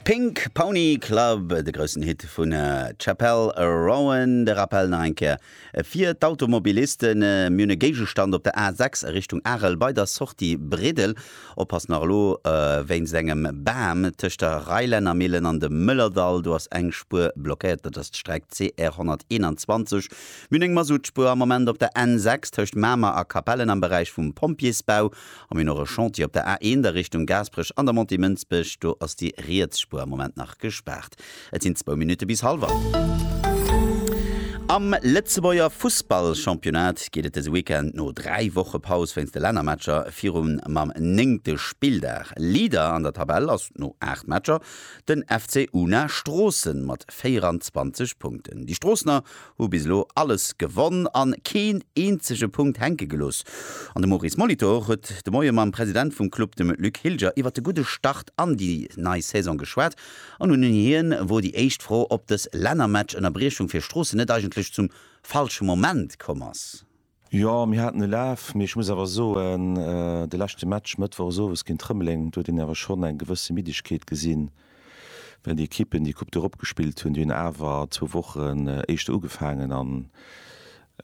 Pink Pony Club, de groussen Hit vun Chappell Roan. De Rappel nach eng Kéier fir d'Automobilisten, Mir hunn e Géigestand op der A6 a Richtung Arel bei der Sortie Bridel. Oppass nach elo wéinst engem Bam tëscht der Reilännermillen an dem Mëllerdall, do ass eng Spuer blockéiert, dat ass d'Streck CR 121. Mir hunn eng Masuttspuer am Moment op der N6 tëscht Mamer a Capellen am Beräich vum Pompjeesbau. An mir hunn och e Chantier op der A 1 a Richtung Gaasperech an der Montée Mënsbech. Do ass déi riets Spuer am Moment nach gespaart. Et sinn zwou Minutte bis hallwer. Am Lëtzebuerger Fussballchampionnat geet et dëse Weekend no dräi Woche Paus wéinst de Lännermatcher virun mam néngte Spilldag. Leader an der Tabell ass no aacht Matcher den FC Una Stroossen mat 24 Punkten. Déi Stroossener hu bis elo alles gewonn an keen eenzege Punkt hänke gelooss. An de Maurice Molitor huet de Moie mam President vum Club, dem Luc Hilger, iwwert de gudde Start an déi nei Saison geschwat an un hien wor déi éischt Fro, ob dës Lännermatch-Ënnerbriechung fir Stroossen net eigentlech zum falsche Moment komm ass. Jo, mir haten e Laf, mee ech muss awer soen, de leschte Match Mëttwochs Owes géint Rëmeleng, do huet een awer schonn eng gewësse Middegkeet gesinn, well déi Ekippen, déi Coupe d'Europe gespillt hunn, déi hunn awer zwou Wochen éischter ugefaangen an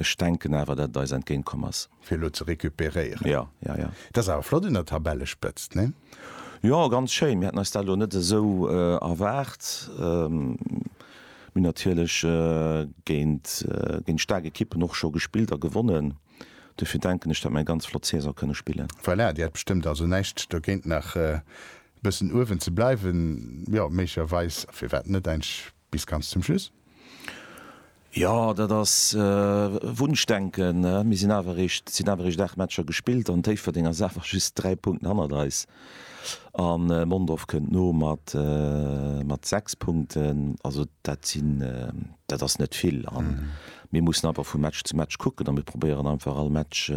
ech denken awer, datt et eis entgéint komm ass. Fir elo ze recuperéieren. Jo, jo, jo. Et ass awer flott un der Tabellespëtzt, nee? Jo, ganz schéin. Mir haten eis dat elo net esou erwaart. Mir hunn natierlech géint géint staark Ekippen och scho gespillt a gewonnen. Dofir denken ech, datt mir eng ganz flott Saison kënne spillen. Voilà, Dir hätt bestëmmt also näischt dogéint nach e bëssen uewen ze bleiwen, jo, méiglecherweis, firwat net eigentlech bis ganz zum Schluss? Jo, dat ass Wunschdenken. Mir sinn awer eréischt, et sinn awer eréischt 8 Matcher gespillt an Déifferdeng ass awer just 3 Punkten hannert eis. An Mondorf kënnt no mat 6 Punkten. Also dat sinn, dat ass net vill. A mir mussen einfach vu Match zu Match kucken a mir probéieren einfach all Match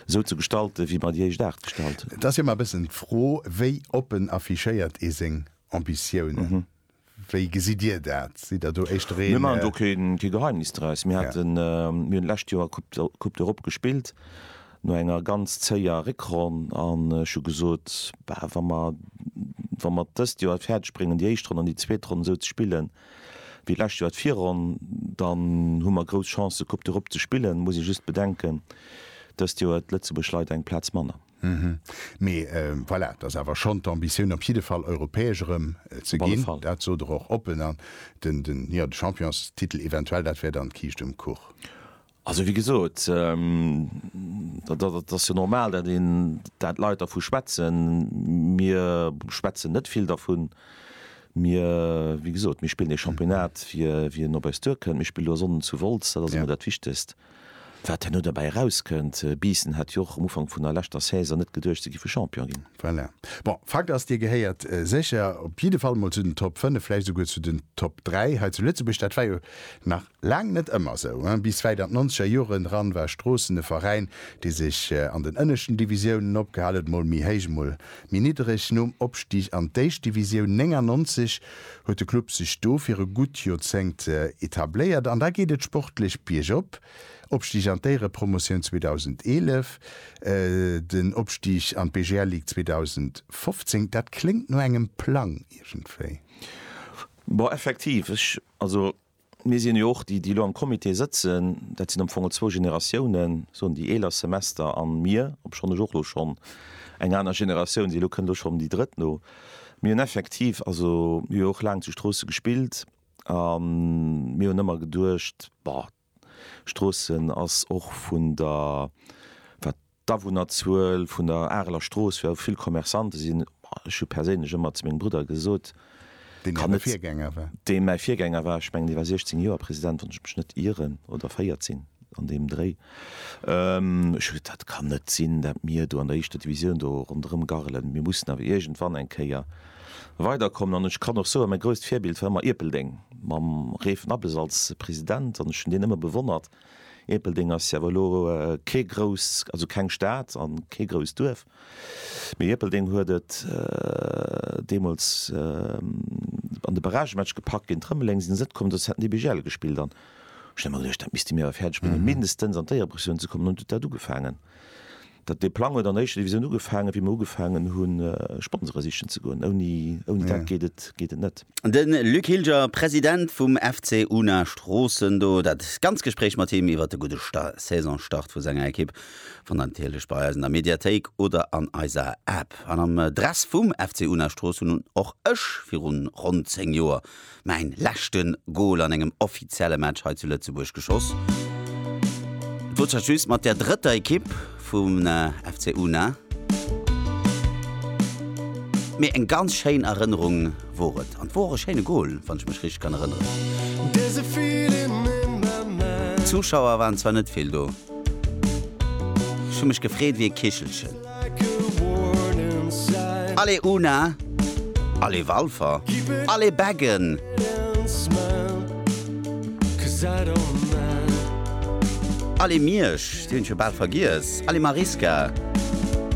esou ze gestalten, wéi mer déi éischt 8 gestalt hunn. Et ass jo ëmmer e bëssen d'Fro, wéi oppen affichéiert ee seng Ambitiounen? Wéi gesitt Dir dat? Sidd Der do éischter ee. Mir maachen do kee Geheimnis draus. Mir haten, mir hunn d'lescht Joer Coupe d'Europe gespillt, no enger ganz zéier Réckronn. An ech hu gesot, bah wa mer, wa mer dëst Joer et fäerdeg bréngen, déi éischt Ronn an déi zweet Ronn esou ze spillen, wéi d'lescht Joer d'Virronn, dann hu mer grouss Chancen, Coupe d'Europe ze spillen. Muss ee just bedenken, dëst Joer huet Lëtzebuerg leider eng Plaz manner. Hm, mee voilà, et ass awer schonn d'Ambitioun op jidde Fall europäesch erëm ze ginn, dat sot Der och oppen. An den, jo, de Championstitel eventuell, dat wär dann d'Kiischt um Kuch? Also wéi gesot, dat ass jo normal, dat een, dat d'Leit dervu schwätzen. Mir schwätzen net vill dervun. Mir, wéi gesot, mir spillen ee Championnat, wien op eis duerkënnt. Mir spillen elo Sonnden zu Wolz, dat ass emol dat Wichtegst. Wat herno derbäi erauskënnt, Biissen hat jo och um Ufank vun der leschter Saison net geduecht, se géife Champion ginn. Voilà. Bon, Fakt ass, Dir gehéiert sécher op jidde Fall mol zu den Top 5, vläicht esouguer zu den Top 3 hei zu Lëtzebuerg. Dat war jo nach laang net ëmmer esou. Bis wäit an d'nonzeger Joren eran war Stroossen e Veräin, dee sech an den ënneschten Divisiounen opgehal huet, mol méi héich, mol méi niddereg. Nom Opstig an d'Éischt Divisioun 99 huet de Club sech do fir e gutt Joerzéngt etabléiert an da geet et sportlech biergop, Opstig an d'Éierepromotioun 2011, den Opstig an d'BGL Ligue 2015. Dat kléngt no engem Plang iergendwéi. Bon, effektiv, ech, also Mir sinn jo och, déi elo am Comité sëtzen, dat sinn am Fong zwou Generatiounen, soen déi eeler Semester an mir, obschonn ech och elo schonn eng aner Generatioun sinn, elo kënnt elo schonn déi drëtt no. Mir hunn effektiv, also mir hu jo och laang zu Stroosse gespillt a mir hunn ëmmer geduecht, bah, Stroossen ass och vun der, wat. D'Awunnerzuel vun der Areler Strooss, wou vill Commerçante sinn, ech hu perséinlech ëmmer zu mengem Brudder gesot, Deen äre Virgänger war. Deen mäi Virgänger war. Ech mengen, dee war 16 Joer President, wann ech mech net ieren, oder 14, an deem Dréi. Ech hu gesot, dat kann net sinn, dat mir do an der éischter Divisioun do ronderëm garrelen. Mir mussen awer iergendwann eng Kéier weiderkommen. An ech kann och soen, mäi grousst Virbild war ëmmer Ierpeldeng, mam Reef Nabbes als President. An ech hunn deen ëmmer bewonnert. Ierpeldeng ass awer elo kee grousst, also keng Stad an kee grousst Duerf, mee Ierpeldeng huet et deemools an de Barragematch gepackt géint Rëmeleng, sinn se net komm, dozou hat den DB Jelle gespillt an ech hunn ëmmer geduecht, dat misste mir awer fäerdeg bréngen, mindestens an d'Éierepressounen ze kommen an hunn dat ugefaangen. Dee Plang huet an der éischter Divisioun ugefaangen, wéi mer ugefaangen hunn, Sponsore sichen ze goen. Ouni, ouni dat geet et, geet et net. De Luc Hilger, President vum FC Unna Stroossen, do dat ganz Gespréich mat him iwwer de gudde Sta Saisonstart vu senger Ekipp fannt der natierlech bei eis an der Mediathéik oder an eiser App. An am Dress vum FC Unna Stroossen hunn och ech virun ronn 10 Joer Mäin leschte Gol an engem offizielle Match hei zu Lëtzebuerg geschoss. Et wor zwar just mat der drëtter Ekipp vum FC Una, mee eng ganz schéin Erënnerung wor et an et wor och e schéine Gol, wann ech mech richteg kann erënneren. Zuschauer waren zwar net vill do, ech hu mech gefreet wéi e Kichelchen. Allez Una! Allez Walfer! Allez Beggen! Allez Miersch, déi hunn ech jo bal vergiess! Allez Mariska!